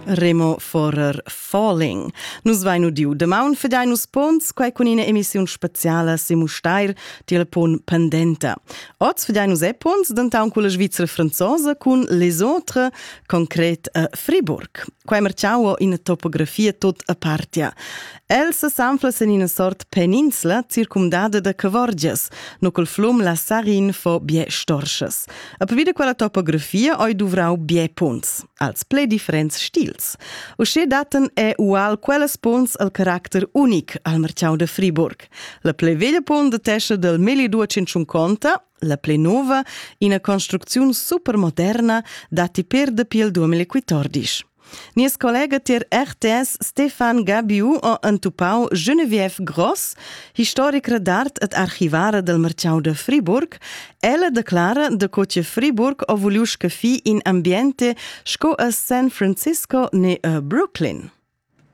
Remo Forer Falling. Nus vein udiu demaun fedein nus pons quei cun ina emissiun speciala se Mustair tiel pon pendenta. Oz fedein nus e pons dentaun con la Svizra franzosa cun Les Autres concret a Friburg. Quei marciau in topografia tot apartia. El sesanfla sin ina sort peninsla circumdada da cavorgias, no col flum la Sarin fo bie storschas. A pavida quella topografia oi duvrau bie punts, als ple differents stils. Usche daten è ual quellas punts al caracter unic al marciau de Friburg. La ple veglia punt de tescia del 1250 la ple nova, ina construcziun supermoderna dati per dapi il 2014. Nies collega tier RTS Stefan Gabiu ha entupau Genevieve Gross, historicra d'art ed archivara del Marciau de Friburg. Ella declara de co che Friburg ha vuliu scaffi in ambiente sco a San Francisco ne a Brooklyn.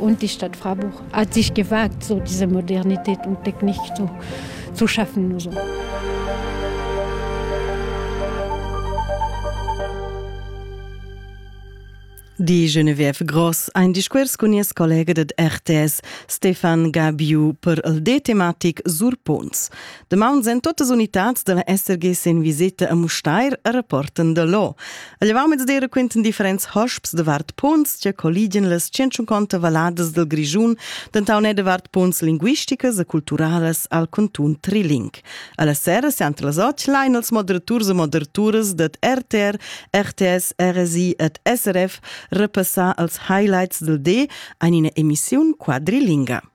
und die Stadt Freiburg hat sich gewagt, so diese Modernität und Technik zu, zu schaffen. So. Die Genevieve Gross, ein Discours con nies collega ded RTS, Stefan Gabiu, per el de tematic Sur Pons. Damaun en totas unitads della SRG sen viseta a Mustair a rapporten da lo. A llevamets de raquinten differents hosps de vart punts che colligen las 150 valadas del Grischun, dentaune de vart punts linguisticas e culturales al cantun Triling. Alla sera siant las och lein als moderaturs e moderaturas dat RTR, RTS, RSI et SRF repassar als highlights del D ein ina emissiun quadrilinga.